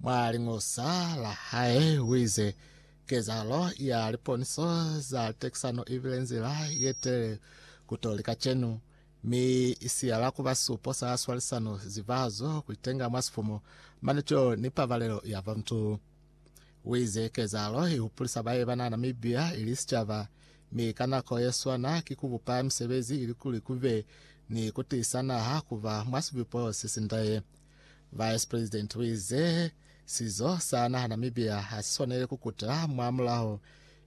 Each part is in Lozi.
Mwa liñosa la hae uize, Kezahalo ya liponiso za tekisano ibile nzila yetelele kutoli kacenu, mi isiyala kuba supo sa swalisano, zivahazo, kuitenga mwa sifumo, manutelo ni pabalelo ya bantu. Uize, Kezahalo ihupulisa bae bana Namibia ili sicaba, mi ka nako yeswana ki kubupa misebezi ilikuli kube ni kutiisa naha kuba mwa sibupo sesindaye. Vice President uize sizo sa naha Namibia hasiswanele kukuta mwa mulaho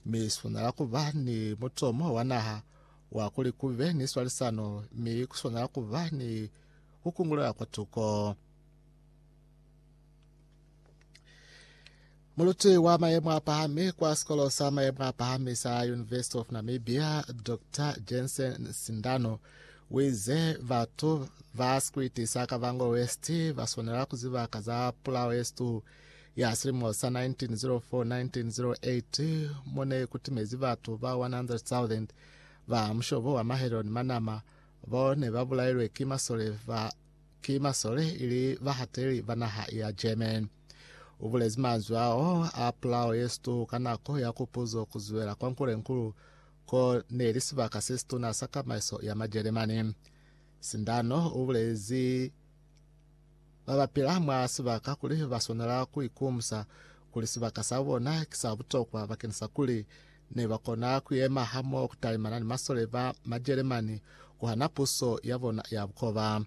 mi siswanela kuba ni mutomo wa naha wa kuli kube ni swalisano mi kuswanela kuba ni kukungulela kwatuko. Muluti wa mayemo a pahami kwa sikolo sa mayemo a pahami sa University of Namibia, Dr Jensen Sindano, wize batu ba sikwiti sa Kavango West baswanela kuziba ka za pulao yesitu ya silimo sa 1904-1908 mone kutimezi batu ba 100,000 ba mushobo wa mahelo ni manama bo ne babulailwe ki masole ba ki masole ili bahateli ba naha ya German. U bulezi manzwi ao a pulao ye situ ka nako ya kupuzo ku zwela kwa Nkulenkulu ko ne li sibaka se situna sa kamaiso ya Majeremani. Sindano u bulezi ba ba pila mwa sibaka kuli ba swanela ku ikumusa kuli sibaka sa bona ki sa butokwa bakeni sa kuli ne ba kona ku yema hamoho ku talimana ni masole ba Majeremani ku hana puso ya bona ya bukoba.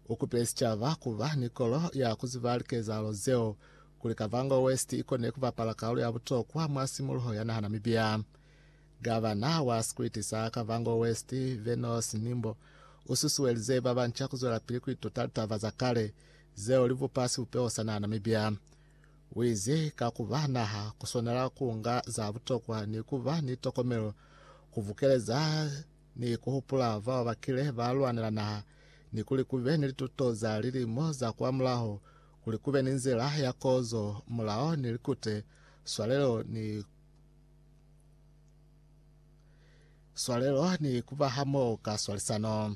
U kupile sicaba ku ba ni kolo ya ku ziba likezahalo zeo, kuli Kavango West i kone ku bapala kaulu ya butokwa mwa simuluho ya naha Namibia. Gavana wa sikwiti sa Kavango West, Venos Nimbo, u susuelize ba banca ku zwelapili ku ituta litaba za kale zeo li bupa sibupeho sa naha Namibia. Uize, Ka kuba naha, kuswanela kuunga za butokwa ni kuba ni tokomelo, kubukeleza ni kuhupula bao bakile balwanela naha, ni kuli kube ni lituto za lilimo za kwamulaho, kuli kube ni nzila ya kozo, mulao ni likute, swalelo ni swalelo ni kuba hamoho ka swalisano.